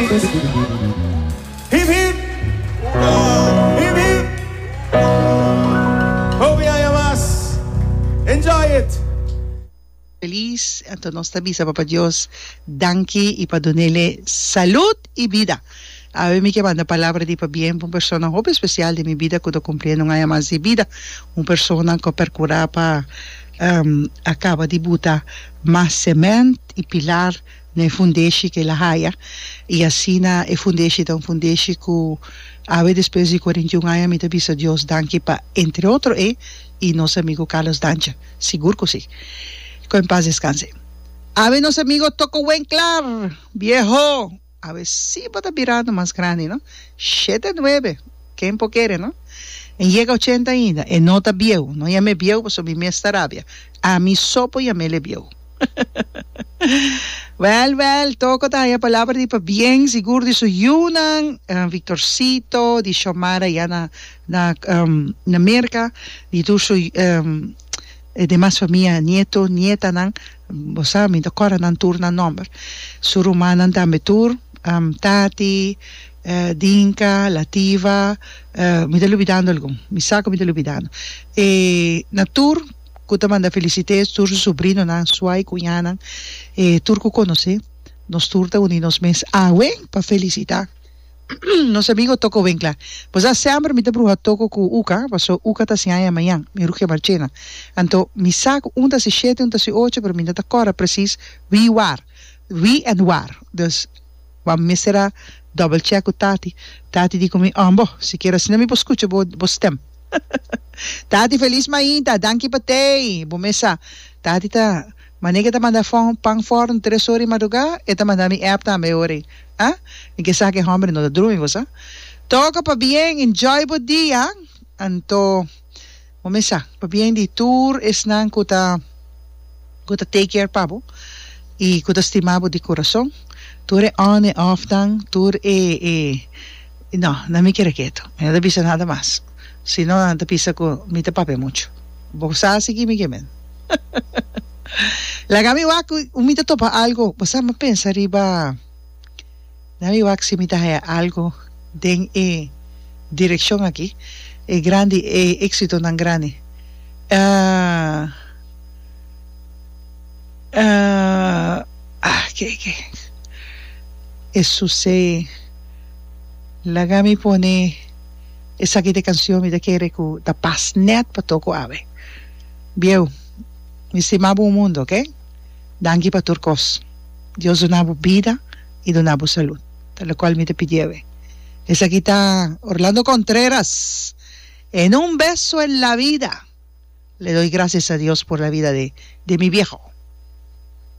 Hip hip Hip hip Hopi aña mas Enjoy it! Feliz anto nos ta bisa Papa Dios danki y padunele salud y bida awe mi ke manda palabra di pabien pa un persona hopi especial den mi bida cu ta cumpliendo un aña mas di bida un persona cu a percura pa a caba di buta mas cement y pilar na e fundeshi ku el a haya i asina e fundeshi ta un fundeshi ku awe despues di cuarenta y un aña mi ta bisa Dios danki pa entre otro e i nos amigu Carlos Dancha sigur ku si ku en pas descanse awe nos amigu Toko Wenclar vieho awe si bo ta birando mas grandi no shete nuebe ken por kere no en yega ochenta ainda e no ta bieu no yam'e bieu pasobra mi mes ta rabia ami so por yam'ele bieu. Well, well, Toco ta haya palabra di pabien sigur di su yunan, eh, Victorcito, di Xiomara ya na, na, em, na Merca, di tur su, em, e demas famia, nieto, nietanan, bo sa, mi ta cora nan tur nan nomber, su rumannan tambe tur, em, Tati, eh, Dinka, Lativa, eh, mi ta lubidando algun, mi sa cu mi ta lubidando, e na tur. Cu ta manda felicite tur su sobrinonan, sua y cuñanan, e tur cu conoce. Nos tur ta uni nos mes awen pa felicita nos amigo Toko Winkler. Pues a sember mi ta bruha Toko cu Uka, paso Uka ta siña Yamayan, mi ruke Marchena. Anto mi sa cu un ta si shete, un ta si ocho, pero mi no ta corda precies wie war, wie en war. Dus bo a mester a double check cu Tati. Tati di cu mi, Ambo, sikier asina mi por scucha bo stem. Tati Feliz Mainta, danki pa tei. Bo mes sa, tati ta Mane ke ta manda fon pan for den tres ora di madruga? E ta manda mi app tambe ahori. Ah, mi ke sa ke homber no ta drumi bo sa. Toca pabien, enjoy bo dia. Anto bo mes sa, pabien di tur esnan ku ta ku ta take care pa bo i ku ta stima bo di kurason, tur e on e off nan, tur e e. I no, nan mi kere ketu. Mi no ta bisa nada mas. Si no, nan ta bisa ku mi ta papia muchu. Bo sa si kimi ke men. Laga mi wak ku mi ta topa algu. Bo sa mi pensa riba na mi wak si mi ta haya algu den e direkshon aki, e grandi, e eksitonan grandi. Ke ke Esus'é. Laga mi pone esaki te cancion mi ta kere cu ta pas net pa toco awe bieu mi stima bo un mundo ok danki pa tur cos Dios duna bo bida y duna bo salud ta lo cual mi ta pidi awe esaki ta Orlando Contreras en un beso en la vida le doy gracias a Dios por la vida de mi vieho.